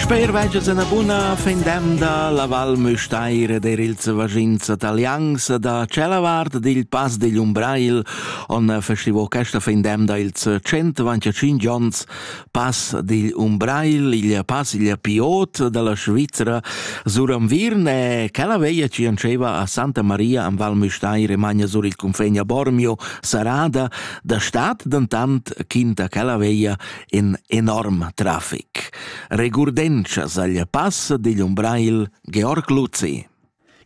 Sper vegias ena buna fin demda la Val Müstair der ils vagints italians da cella vart digl Pass digl Umbrail on festivo questa fin demda ils 125 onns Pass digl Umbrail, il pass il piot dalla Svizzera sur am Virn e quella veia ci anceva a Santa Maria am Val Müstair e magna sur il confegna Bormio Sarada da stat dentant quinta quella veia in enorm trafic. Regurdenschas agl pass digl Umbrail Georg Luzi.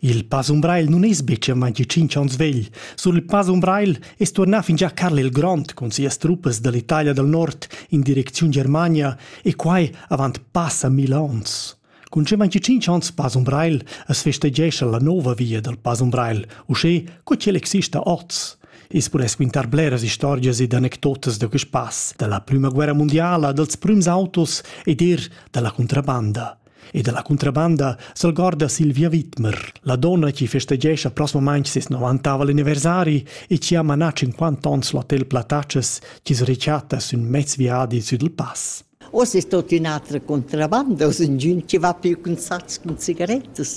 Il Pass Umbrail nun es betg amanti 5 ans vegl. Sur il Pass Umbrail es tuornà fin già Carl il Grond cun sias truppas dall'Italia dal Nord in direcziun Germania e quai avant passa mil ans. Cun che manchi tschintg onns Pass Umbrail as festeggescha la nova via dal Pass Umbrail, uschè co ch'el exista oz. I's pudess quintar bleras istorgias ed anecdotas da quist pass, da la prüma guerra mundiala, dals prüms autos ed eir da la contrabanda. E da la contrabanda s'algorda Silvia Wittmer, la donna chi festeggescha prosmamaing ses 90 anniversari e chi ha manà 50 ons l'hotel Platachas chi's rechatta sün mez viadi sü dal pass. Uoss es tuot ün'atra contrabanda, uoss ingün chi va più cun sats cun cigarettas.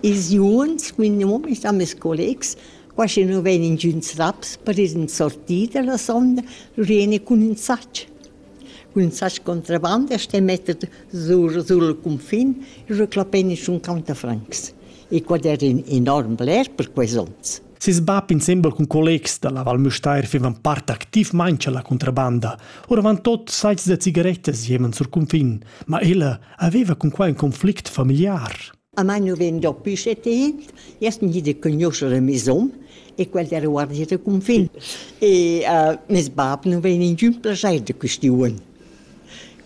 Ils juns cun mia mumma e sta meis collegs, qua schi nu vegn ingüns raps per ir in sortida la sonda, lur jeni cun ün sach. Cun ün sach contrabanda sten metter sur sul cunfin e reclapein inschun cauntafrancs. E quad era ün enorm bler per quels ons. Ses bab insembel cun collegs da la Val Müstair fivan part activmain cha la contrabanda. Oravantot saits da cigarettas jeman sur cunfin, ma ella aveva cun quai in conflict familiar. A mai nu vegn dapü setit, jast gnit de conoscere mes hom, e quel era guardia de confin. E uh, mes bab nu vegn in giun plaschair de questiun.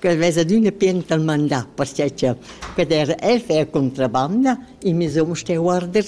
Quel vesa d'üna pien tal mandà, perché che quel era el fer contrabanda, e mes hom sté guarder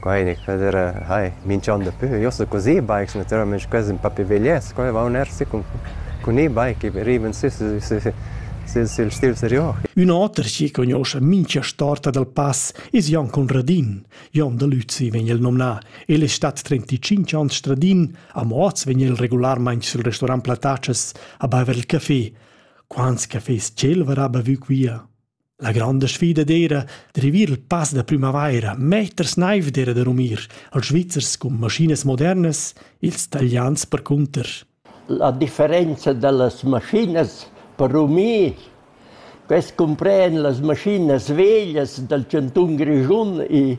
Quai gnü quel era hai minch'on dapü. Io sto cun e-bikes natüralmaing, quels ün pa pi veglies. Quai vaun eir sü cun cun e-bike e rivan sü sü sü sül sül stil serior. Ün oter chi cugnuoscha mincha storta dal pass es Jon Conradin. Jon da Lüzi vegn el nomnà. El es stat trenticinch ans stradin, amo hoz vegn el regularmaing sül restorant Platatschas a baiver il café. Quants cafés ch'el varà bavü quia? La granda sfida d'eira d'rivir il pass da prümavaira meters naiv d'eira da rumir als Svizzers cun maschinas modernas, ils talians percunter. La differenza da las maschinas per rumir quest cumpren las maschinas veglias dal chantun Grischun e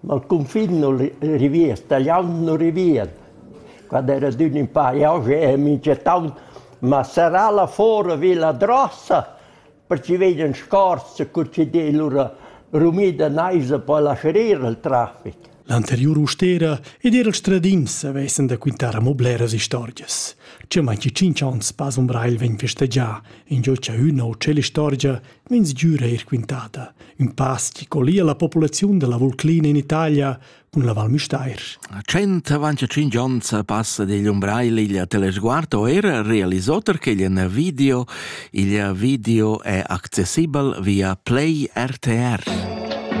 Ma il cunfin nun rivien, stagliaun nun rivien. Quand era adün ün pa jauche e minchetant m'ha serrà là fora vi la drossa perche vegnan scorse cur chi d'he lura rumida naisa po lascerir il trafic. L'anteriur ustera ed eir il stradin s'avessan da quintar amo bleras istorgias. Cha mai chi tschinch ons pas umbrail vegn festegià, ingio cha üna o tschella istorgia Mins giura eir quintada, ün pass chi collia la populaziun da la Vulclina in Italia cun la Val Müstair. A 125 ons passa digl umbrai l'iglia Telesguardo era realisoter che igl video. Il video è accessibel via Play RTR.